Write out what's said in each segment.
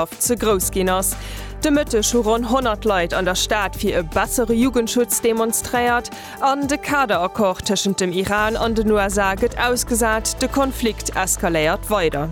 Bereitschaft ze grouss ginn ass. De Mëtteg hu ronn 100 Leit an der Stad fir e bessere Jugendschutz demonstréiert an de Kaderaccord tëschent dem Iran an den USA gëtt ausgesat, de Konflikt eskaléiert weider.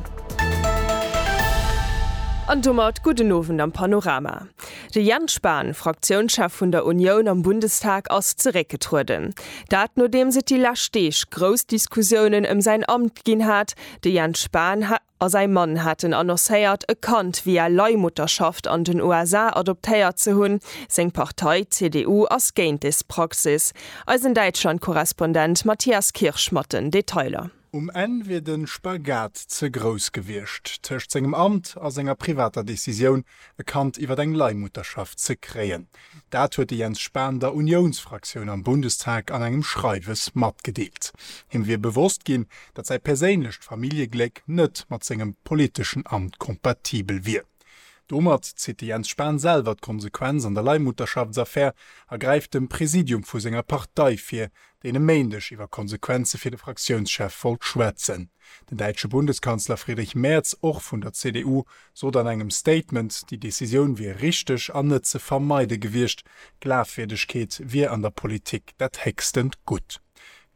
An domat gudden Owend am Panorama. De Jens Spahn, Fraktiounschef vun der Unioun am Bundestag, ass zeréckgetrueden. Dat nodeems et déi lescht Deeg grouss Diskussiounen ëm säin Amt ginn hat. De Jens Spahn a säi Mann haten annoncéiert, e Kand via Leihmutterschaft an den USA adoptéiert ze hunn. Seng Partei, d'CDU, ass géint des Praxis. Eisen Däitschland-Korrespondent Matthias Kirsch mat den Detailer. Um Enn wier de Spagat ze grouss gewiescht, tëscht sengem Amt a senger privater Decisioun, e Kand iwwer eng Leihmutterschaft ze kréien. Dat huet de Jens Spahn der Uniounsfraktioun am Bundestag an engem Schreiwes matgedeelt. Him wier bewosst ginn, datt säi perséinlecht Familljegléck net mat sengem politeschen Amt kompatibel wier. Domat zitt de Jens Spahn selwer d'Konsequenz an der Leihmutterschaftsaffär a gräift dem Präsidium vu senger Partei vir, deen e Méindeg iwwer Konsequenze fir de Fraktiounschef wollt schwätzen. Den däitsche Bundeskanzler Friedrich Merz, och vun der CDU, sot an engem Statement, déi Decisioun wier richteg an net ze vermeide gewiescht. Glafwierdegkeet wier an der Politik dat héchstent Gutt.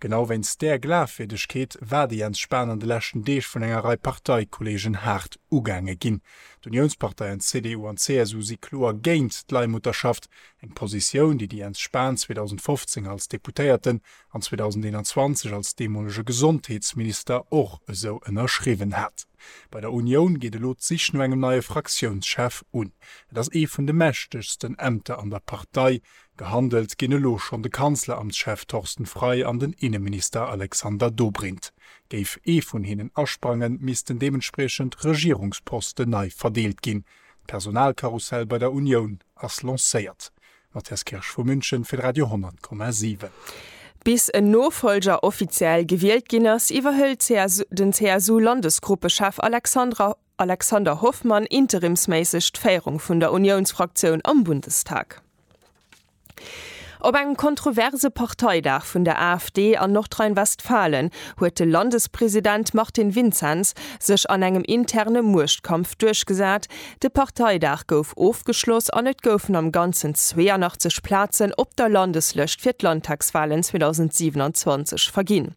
Genau wéinst där Glafwierdegkeet war de Jens Spahn an de leschten Deeg vun enger Rei Parteikollegen haart ugaange ginn. D'Uniounsparteien CDU an CSU si kloer géint d'Leihmutterschaft, eng Positioun, déi de Jens Spahn 2015 als Deputéierten an 2021 als deemolege Gesondheetsminister och esou ënnerschriwwen hat. Bei der Unioun geet elo d'Sich no engem neie Fraktiounschef un. Et ass ee vun de mächtegsten Ämter an der Partei. Gehandelt ginn elo schonn de Kanzleramtschef Torsten Frei an den Inneminister Alexander Dobrindt. Géif ee vun hinnen asprangen, missten deementspriechend Regierungsposten nei verdeelt ginn. D'Personalkarussell bei der Unioun ass lancéiert. Mathias Kirsch vu München fir Radio 10,7. Bis en Nofollger offiziell gewielt ginn ass, iwwerhëlt den CSU-Landesgruppechef Alexander Hoffmann interimsméisseg d'Féierung vun der Uniounsfraktioun am Bundestag. Op engem kontroverse Parteidag vun der AfD an Nordrhein-Westfalen huet de Landespresident Martin Vinzens sech an engem interne Muechtkampf duerchgesat, De Parteidag gouf ofgeschloss an et goufen am Ganzen 82 Plazen op der Landeslëscht fir d'Landtagswalen 2027 verginn.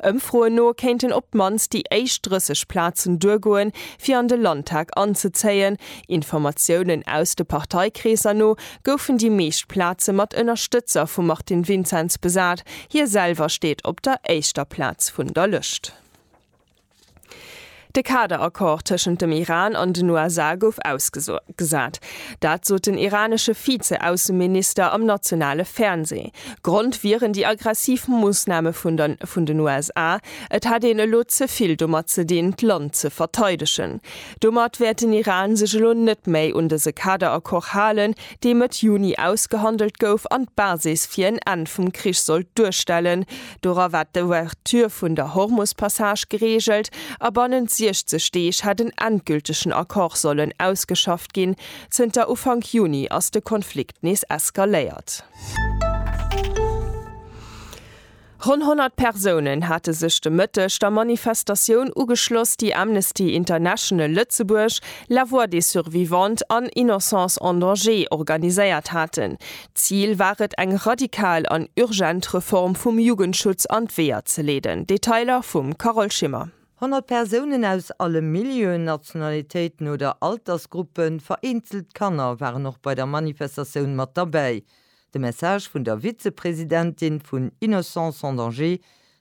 Ëmfroen no kéinten op d'mannst déi éischt 30 Plazen duergoen, fir an de Landtag anzezéien. Informatiounen aus de Parteikreesser no goufen déi meescht Plaze mat Ënnerstëtzer vum Martin Vinzenz besat, hie selwer steet op der éischter Plaz vun der Lëscht. De Kaderaccord tëschent dem Iran an den USA gouf ausgesat. Dat sot den iranesche Vize-Ausseminister am nationale Fernsee. Grond wieren déi aggressiv Moossname vun den USA. Et hätt een elo ze vill domat ze dinn, d'Land ze verteidegen. Domat wäert den Iran sech elo net méi un dëse Kaderaccord halen, dee Mëtt Juni ausgehandelt gouf an d'Basis fir en Enn vum Krich sollt duerstellen, Dora war d'Ouverture vun der Hormus-Passage gereegelt a bannent 60 Deeg hätt en endgültegen Accord sollen ausgeschafft ginn. Zënter Ufank Juni ass de Konflikt nees eskaléiert. Ronn 100 Persounen hate sech de Mëtteg der Manifestatioun ugeschloss, déi Amnesty International Lëtzebuerg, La Voix des Survivantes an Innocence en Danger organiséiert haten. Zil war et eng radikal an urgent Reform vum Jugendschutz an d'Weeër ze leeden. Detailer vum Carole Schimmer. Honnert Persounen aus alle Milieuen, Nationalitéiten oder Altersgruppen, vereenzelt Kanner, waren och bei der Manifestatioun mat derbäi. De Message vun der Vizepresidentin vun Innocence sans danger,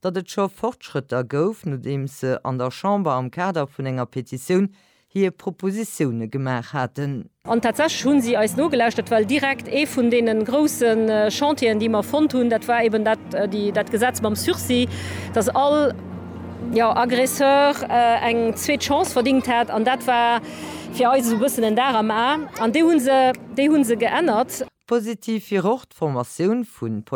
datt et scho Fortschrëtter gouf, nodeems se an der Chamber am Kader vun enger Petitioun hir Propositioune gemaach haten. An tatsächlech hu si eis nogelauschtert, well direkt ee vun deene grousse Chantieren, déi mer fonnt hunn, dat war eben dat Gesetz mam Sursis, datt all Aggresseur eng zweet Chance verdingt hätt. An dat war fir eis esou e bëssen en Dar am A. An déi hu se geännert. Positiv wier och d'Formatioun vu.